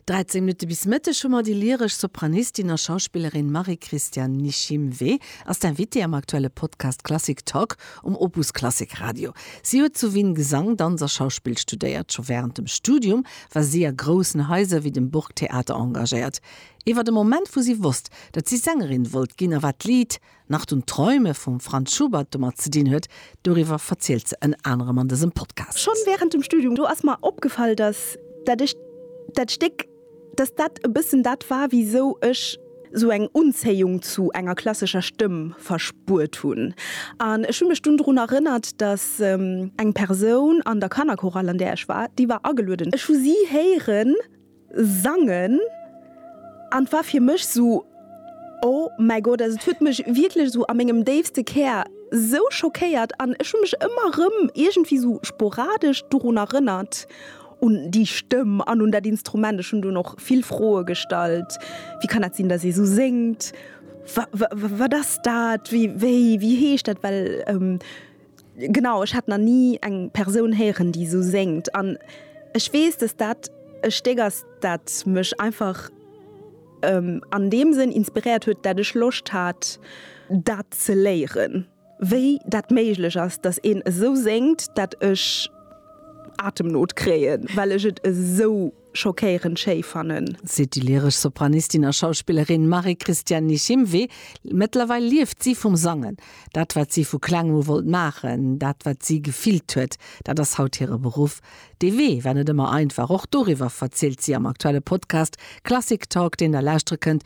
13 Minutte bis Mëtteg hu mer déi lyresch Sopranistin a Schauspillerin Marie-Christiane Nishimwe als d'Invitée am aktuelle Podcast Klassik Talk um Opus Klassik Radio. Si huet zu Wien Gesang, Danz a Schauspill studéiert. Scho wärend dem Studium war si a groussen Haiser wéi dem Burgtheater engagéiert. Iwwer e Moment, wou si wosst, datt si Sängerin wollt ginn a wat d'Lidd Nacht und Träume vum Franz Schubert domat ze dinn huet. Doriwwer verzielt se ënner anerem an dësem Podcast. Schonn während dem Studium do ass mer opgefall, dass dat ech dat Stéck, dass dat e bëssen dat war, wisou ech sou eng Unzéiung zu enger klassescher Stëmm verspuert hunn. An ech hu mech dunn drun erënnert, dass eng Persoun an der Kannerchorale, an där ech war, déi war agelueden, ech hu si héieren sangen an et war fir mech sou oh mäi Gott, also et huet mech wierklech sou a mengem déifste Kär sou schockéiert an ech hu mech ëmmer rëm iergendwéi sou sporadesch dorun erënnert un déi Stëmm an un dat Instrument. Ech hunn dunn och vill Froe gestallt, wéi kann dat sinn, datt ee sou séngt, wa-wa-wat ass dat, wéi-wéi-wéi heescht dat, well Genau, ech hat na ni eng Persoun héieren déi esou séngt an ech weess dass dat e Stéck ass dat mech einfach an deem Sënn inspiréiert huet dat ech Loscht hat dat ze léieren, wéi dat méiglech ass dass een esou séngt dat ech Atemnot kréien, well ech et esou. schockéirend schéi fannen. Seet déi lyresch Sopranistin a Schauspillerin Marie-Christiane Nichimwe. Mëttlerweil lieft si vum Sangen. Dat, wat si vu kleng u wollt maachen, dat, wat si gefillt huet, dat ass haut hire Beruff. Dee Wee war net ëmmer einfach. Och doriwwer verzielt si am aktuelle Podcast Klassik Talk, deen Der lauschtere kënnt